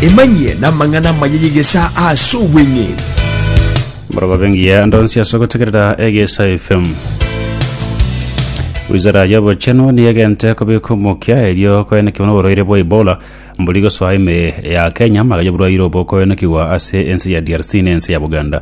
emanyie n'amang'ana amaya y'egesa ase obweng'e moroba bengiya ndonsi ase ogotegerera egesa fm wizara y'obochenu niyo egente kobeka omokia erio koenekigwa n'oborwaire bwa ebola mbori gosoa ime ya kenya magayo oborwaire obo koenekigwa ase ense ya drc na ense ya buganda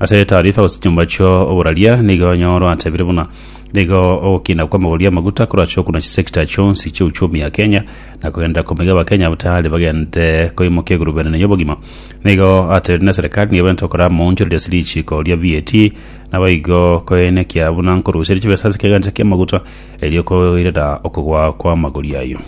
Ase etaarifa gose chinyomba chio oboraria nigo onye oratebire buna nigo ogokinda kw'amagori amaguta korache okuna chisekta chionsi chi'uchumi ya Kenya na kogenderera komoiga abakenya bataari bagende koimokia egurube enene y'obogima. Nigo atebire buna serikali nigo ebenta okora amaonchoreri ase richiiko ria VAT nabo igo koenekia buna nkoruseria chibesa ase kegancha ki'amaguta Erio koirera okogwa kw'amagori ayio.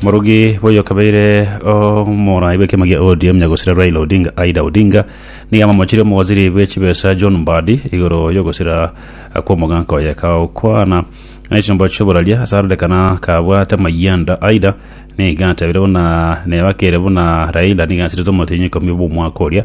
Omorogi boyo kabeire omorai bw'ekiama gia ODM nyagosira Raila Odinga Aida Odinga nigo amamochire omowaziri bw'echibesa John Mbadi igoro y'ogosira kw'omoganka oye kagokwana nechimbo chioboraria ase arorekana kabwate amayanda Aida nigo atebeire buna neba kere buna Raila nigo asirete omotienyi ikomi bw'omwaka oria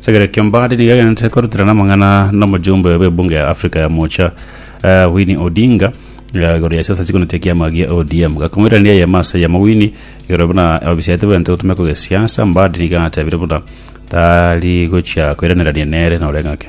Chekirori kia Mbadi nigo egenderete koruterana amang'ana n'omojumbe bw'ebunge ya Afrika ya Moocha eh, Winnie Odinga eh, igoro ya siasa chikonete ekiama gia ODM gakomoirania eyemo ase eyemo Winnie igoro buna obisaete bwente gotumeka gesiasa Mbadi nigo atebire buna tari gochia koiranerania nere nore ng'ake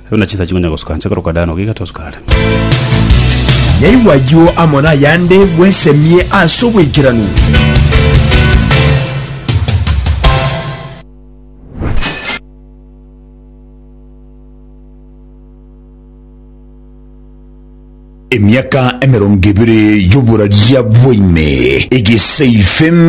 Ebi na chinsa chinkonya gosuka nse korokwa Dano giga tosuka are. Naigwa ayio amo nayande bwesemie ase obwaikeranu. Emiaka emerongo ebere y'oboraria bwaine egeseife